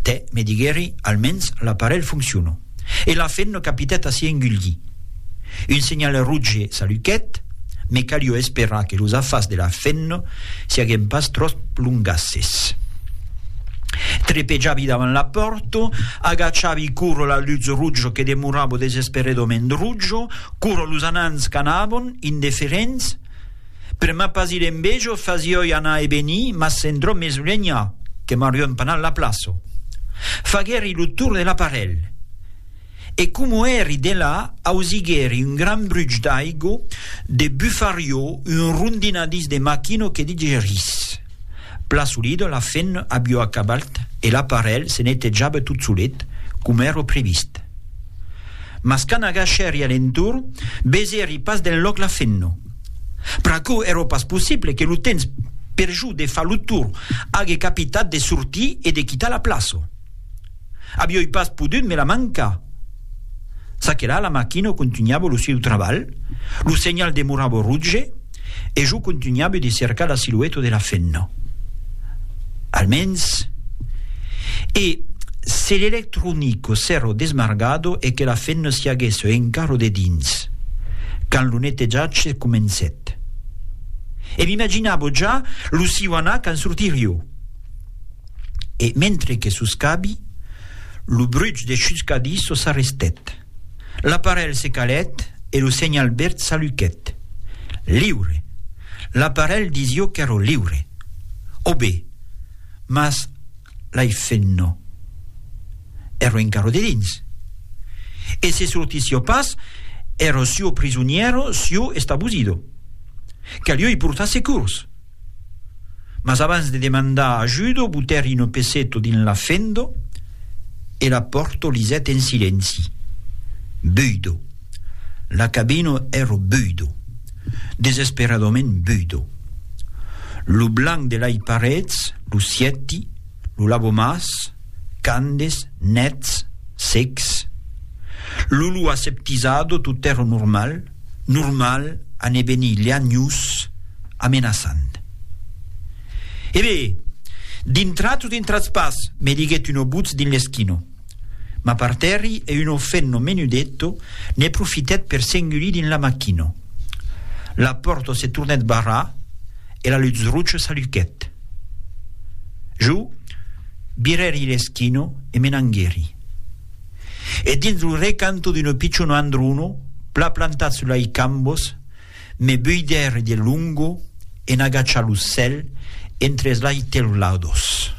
Tè, me diguèri, almens l'aparelh fonciona. E la fenna capitèt a s'i engulhir. Un senhal roge s'aluquèt, me calió esperar que los afars de la fenna siaguen pas tròp longasses. Trepejavi davant la pòrta, agachavi cura la lutz roja que demorava desesperedament roja, cura los anans qu'anavan, indeferents, Per ma pas ir en bejo fasioi anar e venir, mas s'endrò mes lenha, que m'arriò empanat la plaço. Faguèri lo tour de l'aparelh. E como èri delà, ausiguèri un gran bruch d'aigo, de bufariò, un rondinadís de maquino que digerís. Plaçolido la fenn abiò acabalt e l'aparelh se netejava tot solet, coma èro previst. Mas quand agachèri a l'entorn, besèri pas d'enlòc la fenno. Pr'aquò èra pas possible que lo temps per jo de far lo tour ague capitat de sortir e de quitar la plaça. Avioi pas podut me la mancar. Ça que la la machina contunhava lo sieu trabalh, lo senhal demorava roge, e jo contunhabe de cercar la silueta de la femna. Almens. E se l'electronico s'èra desmargado e que la femna s'i aguèsse encara dedins, quand lo netejatge comencèt. E m'imaginabo ja lo siu anar quand sortirio. E mentre que soscabi, lo bruch de chuscadissa s'arrestèt. L'aparelh se calèt e lo senhal verd s'aluquèt. Liure! L'aparelh disió qu'èro liure. O be! Mas l'ai fent no. Èro encara dedins. E se sortissió pas, èro suo prisonièro, suo estabusido. Calió i portar securs. Mas abans de demandar ajudo, butèri no peseto dins la fendo e la pòrto lisèt en silenci. Buido. La cabino èro buido. Desesperadament buido. Lo blanc de lai parets, lo sièti, lo lavomàs, candes, nets, secs. Lo lu aseptisado, totèro normal. normal a ne venir leanhus amenaçant. E be, dintratz o dintratz pas, me diguèt uno butz dins l'esquino. M'apartèri e uno fenno menudetto ne profitèt per s'engulir dins la machino. La pòrta se tornèt barrar e la lutz rocha s'aluchèt. Jo virèri l'esquino e me n'anguèri. e dins lo recanto d'una pichona andruna pla plantar sus lai cambos me buider de lungo en agachar lo cèl entre es lai teulados.